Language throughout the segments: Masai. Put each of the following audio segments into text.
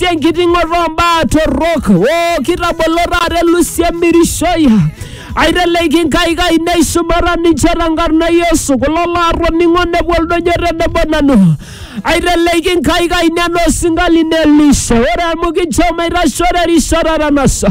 tenkiting'oto ombaa torrok o kitabolo taata elusi emirishoi aiteleki inkaik ainei shumata ninche tenkarna e Yesu kulo laatoning'o nepuo oldonyo tenebo nanu aiteleki inkaik ainei enaa osinka lino Elisha ore amu kincho maitasho terishata etanasa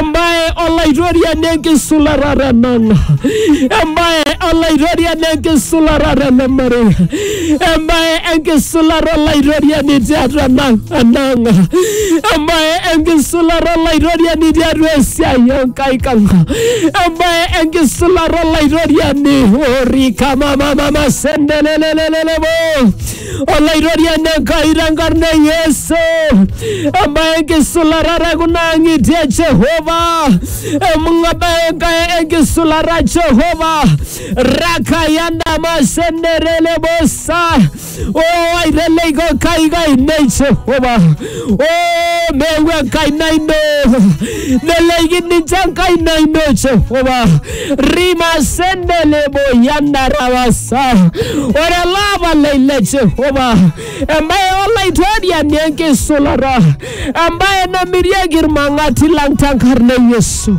Embae olaitoriani enkisulata tenang, embae olaitoriani enkisulata tele marei, embae enkisulata olaitoriani tiatua enang, enang, embae enkisulata olaitoriani tiatua esiai Enkai kang, embae enkisulata olaitoriani orika mamamama sendelelelelelebo Olaitoriani Enkai tenkarna e Yesu, ebae enkisularata kuna ang'itie e Jehova, emung'abae Enkai enkisularata Jehova, rakayanda masenderele bosa, o aiteleiko Enkai kainei Jehova, o meewuo enkaina ino, neleiki ninche enkaina ino Jehova, rimasendelebo yandarawasa ore olapa lai le jehova embaye olaitoriani enkisulata embaye namirieki irmang'ati lang tenkarna e yesu